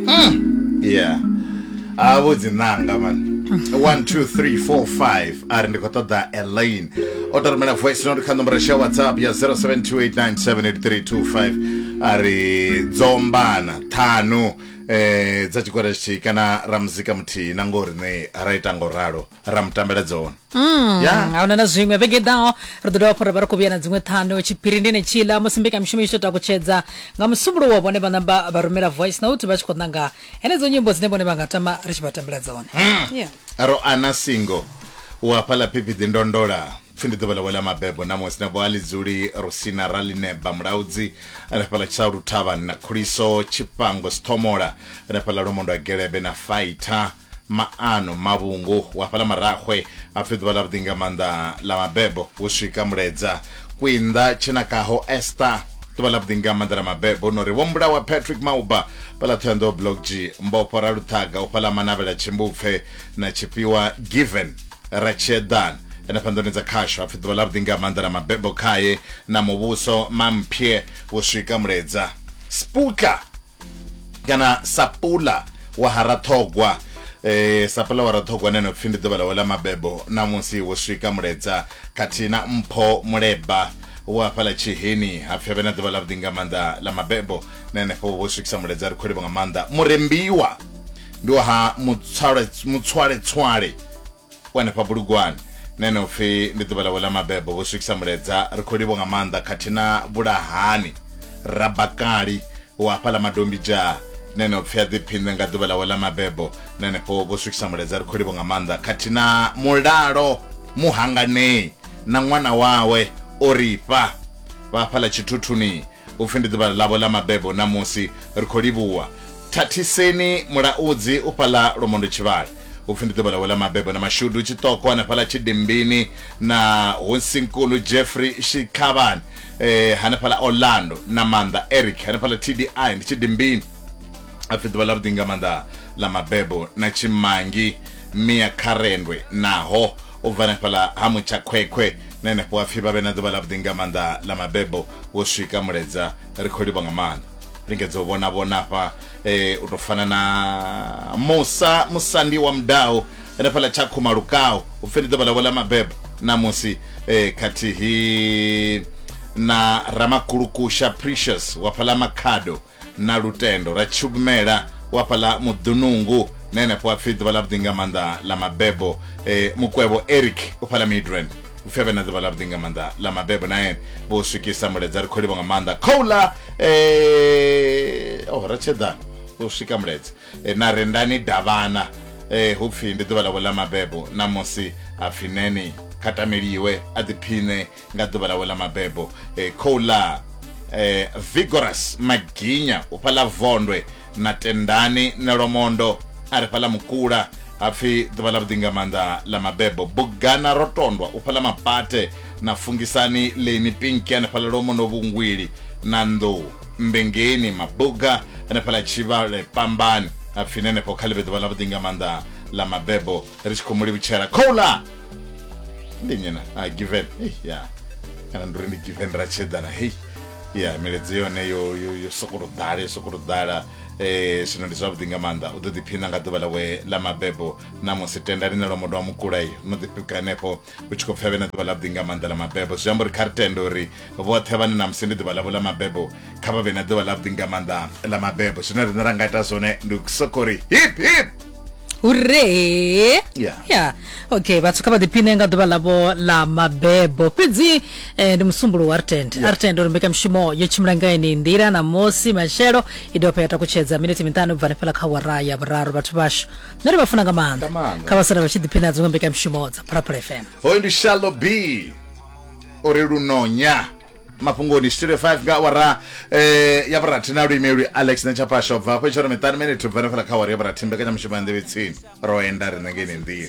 Mm. yeah a vho dzi ṋanga man 1 2 3 4 5 a ri ndi khou ṱoḓa elaine o to rumela voice note kha nomboro sha whatsapp ya 0728978325 a ri dzombana ṱhanu eh dza tshigwada tshithihi kana ra muzika muthihi na ngori ne ra ita ngo ralo ra mu tambela dzone Mm, Yeah. ahuna na zwiṅwe vhege ḓaho ri ḓo dovha fhura vha ri khou vhuya na dziṅwe ṱhanu tshiphiri ndi netshila musi mbekamishumo i tshi tou takutshedza nga musumbulo wa vhone vhana ba vha rumela voice note vha tshi khou ṋanga henedzo nyimbo dzine vhone vha nga tama ri tshi vha tambela dzone Yeah. ro ana singo u hafhaḽa phiphiḓi ndondola pfi ndi ḓuvha ḽawe ḽa mabebo namusi na boali dzuli rusina ralineba mulaudzi ri hafhaḽa tsha luthavhani na khuliso tshifhango sithomola ri hafhaḽa lomondwa gelebe na faitha maano mavhungu wa fhaḽa marahwe a pfi ḓuvha ḽa vhuḓi nga maanḓa ḽa mabebo hu swika muledza kwinḓa tshenakaho esta ḓuvha ḽa vhuḓi nga maanḓa ḽa mabebo no ri vho mbulawa patrick mauba fhaḽa thohoyanḓou blog g mbofho ra luṱhaga u fhaḽa manavhela tshimbupfe na tshifhiwa given ra tshiedana henefha nḓuni dza khasho hapfi ḓuvha ḽa vhuḓi nga maanḓa ḽa mabebo khaye na muvhuso mampye hu swika muledza spuka kana sapula wa harathogwa eh sapula wa rathogwa nene pfi ndi ḓuvha ḽawe ḽa mabebo namusi wo swika muledza khathihi na mpho muleba wa fhala tshiheni ha pfi vhe na ḓuvha ḽa vhuḓi nga maanḓa ḽa mabebo na henefho wo swikisa muledza ri khou livha nga maanḓa murembiwa ndi wa ha mutswale mutswale tswale wanefha bulugwane na ene upfi ndi ḓuvha ḽawe ḽa mabebo vho swikisa muledza ri khou livho nga maanḓa khathihi na vhulahani rabakali wa hafhaḽa madombi dzhaa na ene upfi a ḓiphinṋe nga ḓuvha ḽawe ḽa mabebo na henefho vho swikisa muledza ri khou livho nga maanḓa khathihi na mulalo muhanganei na ṅwana wawe orifha vha hafhaḽa tshithuthuni upfi ndi ḓuvha ḽavho ḽa mabebo ṋamusi ri khou livhuwa thathiseni mulaudzi u fhaḽa lwomondo tshivhale upfi ndi ḓuvha ḽawe ḽa mabebo na mashudu tshiṱoko hanefhaḽa tshidimbini na hosinkulu jeffrey shikhavhani eh, hanefhaḽa orlando na maanḓa eric hanefhaḽa tdi ndi tshidimbini apfi ḓuvha ḽa vhuḓi nga maanḓa ḽa mabebo na tshimangi mia kharendwe naho u bva hanefhaḽa ha mutsha khwekhwe na henefho apfi vha vhe na ḓuvha ḽa vhuḓi nga maanḓa ḽa mabebo wo swika muledza ri khou livha nga maanḓa lingedza u vhona vhona hafha eh, u tou fana na musa musandi wa mudau hanefhaḽa tshakhuma lukau u pfhi ndi ḓuvha ḽavho ḽa mabebo namusi eh, khathihi na ramakulukusha precious wa fhaḽa makhado na lutendo ra tshugmela wa fhaḽa Muḓunungu na henefho ha pfi ḓuvha ḽavhuḓi nga maanḓa ḽa mabebo. E, Mukwevho Eric u fhaḽa Midrand u pfi a vhe na ḓuvha ḽavhuḓi nga maanḓa ḽa mabebo na ene vho swikisa muledza ri khou livha nga maanḓa khouḽa e, oh, ratshedana u swika muledza e, na rendani davhana e, hu pfi ndi ḓuvha ḽavho ḽa mabebo na musi ha pfi neni kha tameliwe a ḓiphiṋe nga ḓuvha ḽawe ḽa mabebo eh, khou ḽa eh, vigorous maginya u fhaḽa vondwe na tendani na lomondo a ri fhaḽa mukula hapfi ḓuvha ḽa vhuḓi nga maanḓa ḽa mabebo bugana ro tondwa u fhaḽa mapate na fungisani leni pinki hanefhaḽa lomo no vhungwili na nḓou mbengeni mabuga hanefhaḽa tshivhale pambani hapfi nenefho kha ḽi vhe ḓuvha ḽa vhuḓi nga maanḓa ḽa mabebo ri tshi khou mu livhutshela khoula ndi nnyi na a given Hey, ya kana ndi uri ndi given ra tshedzana hei ya miledzi yone yo yo yo sokoto ḓala yo sokoto ḓala eh zwino ndi zwavhuḓi nga maanḓa u ḓo ḓiphina nga ḓuvha ḽawe ḽa mabebo na musi tendani na lwa modo wa mukula iyo no ḓipika henefho hu tshi khou pfha vhe na ḓuvha ḽavhuḓi nga maanḓa ḽa mabebo zwi amba uri kha ri tende uri vhoṱhe vhane na musi ndi ḓuvha ḽavho ḽa mabebo kha vha vhe na ḓuvha ḽavhuḓi nga maanḓa ḽa mabebo zwine riṋe ra nga ita zwone ndi u sokou ri hip hip hure ya yeah. okay vhathu kha vha ḓiphine nga ḓuvha ḽavho ḽa mabebo fhedzi eh, ndi musumbulu wa rtend yeah. rtend uri mbekanyamushumo yo tshimbila nga ene nḓila na mosi matshelo i dovha pha ya takutshedza miniti miṱanu u bva hanefhala kha wara ya vhuraru vhathu vhashu nṋe ri vha funa nga maanḓa Nga maanḓa. kha vha sala vha tshi ḓiphina dziṅwe mbekanyamushumo dza phalaphala fm hoyu ndi shallow b uri lunonya mafhungoni studio 5 nga awara eh, ya vhurathi na luimelwi alex na tshapasho bva hafho itshora miṱani mene thubva no fela kha awara ya vhurathi mbekanyamushumo ya nḓevhetsini ro enda riṋe ngeni nḓini